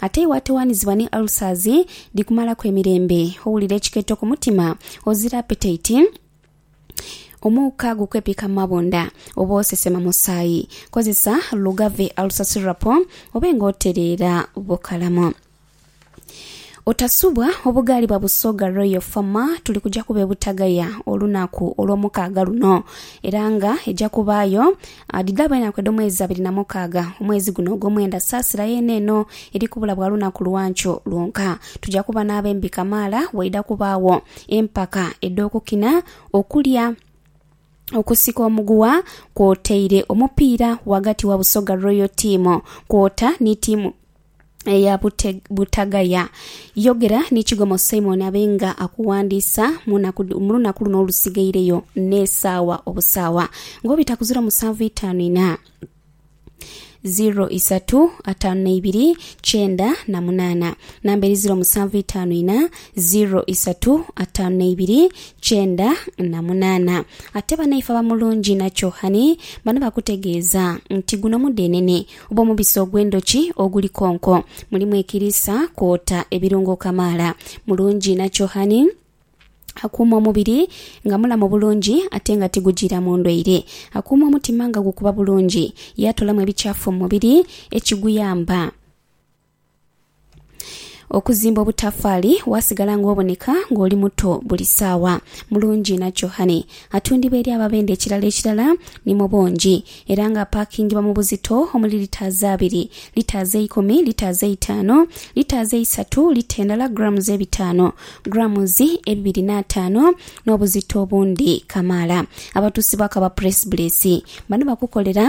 Ate iwe atoghanizibwa ni ulcers dhikumalaku emirembe, owulira ekikeeto ku mutima, ozira appetite, omuuka gukwepika mu mabunda, oba osesema musaayi, kozesa Lugave Ulcer Syrup obe nga otereera bukalamu. Otasubwa, obughalibwa Busoga Royal Pharma tuli kuja kuba e Butagaya olunaku Olwomukaaga luno era nga eja kubaayo Adhidhaabu enaku edh'omwezi abiri na mukaaga, omwezi guno ogw'omwenda, saasira yeene eno eri kubula bwa lunaku lwankyo lwonka. Tuja kuba n'abembi kamaala, waidha kubaagho empaka edh'okukina, okulya, okusika omuguwa kwotaire omupiira ghagati wa Busoga Royal Team kwota ni tiimu eya butagaya. Yogera ni Kigomo Simon abe nga akuwandiisa mu lunaku luno olusigaireyo n'esaawa obusaawa nga obita ku ziro musanvu itaanu ina, ziro isatu ataanu na ibiri kyenda na munaana. Namba eri ziro musanvu itaanu ina, ziro isatu ataanu na ibiri kyenda na munaana. Ate banaife aba Mulungi na Kyohani bano bakutegeeza nti guno mudeenene Oba omubisi ogw'endhoki oguli konko mulimu ekiriisa kwota ebirungo kamaala. Mulungi inakyo honey. Akuuma omubiri nga mulamu bulungi ate nga tigujiiramu ndwaire. Akuuma omutima nga gukuba bulungi. Yaatolamu ebikyafu mu mubiri ekiguyamba. Okuzimba obutafaali waasigala ng'oboneka ng'oli muto buli ssaawa. Mulungi inakyo Honey atundibwa eri ababenda ekirala ekirala ni mu bungi era ng'apaakingibwa mu buzito omuli litaazi abiri, litaazi eikumi, litaazi eitaano, litaazi eisatu, lita endala grams ebitaano, grams ebibiri n'ataano n'obuzito obundi kamaala. Abatuusi ba Kaba Press Bliss bano bakukolera.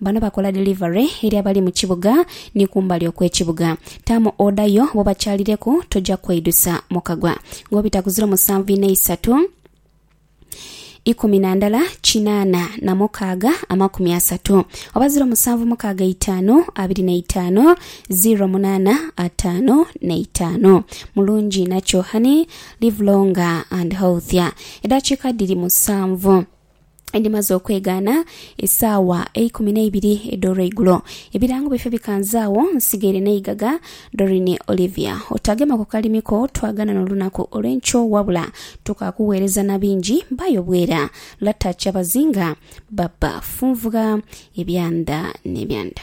Bano bakola delivery eri abali mu kibuga ni kumbali okw'ekibuga. Taamu oda yo bwobakyalireku toja kweidusa mu kagwa. Ng'obita ku ziro musanvu inha isatu, ikumi na ndala kinaana na mukaaga amakumi asatu, oba ziro musanvu mukaaga eitaanu abiri na itaanu ziro munaana ataanu na itaanu. Mulungi inha kyo honey, live longer and healthier. Edaakiika dhiri musanvu. edhimaze okwegaana esaawa eikumi n'eibiri edh'olweigulo. Ebirango byaifee bikanze agho, nsigaire n'eigaga. Doreen Olivia. Otagema ku kalimi ko twagana n'olunaku olw'enkyo wabula tukakugheereza na bingi. Baayo bwera. Lata Kyabazinga. Baba funvugha ebyanda n'ebyanda.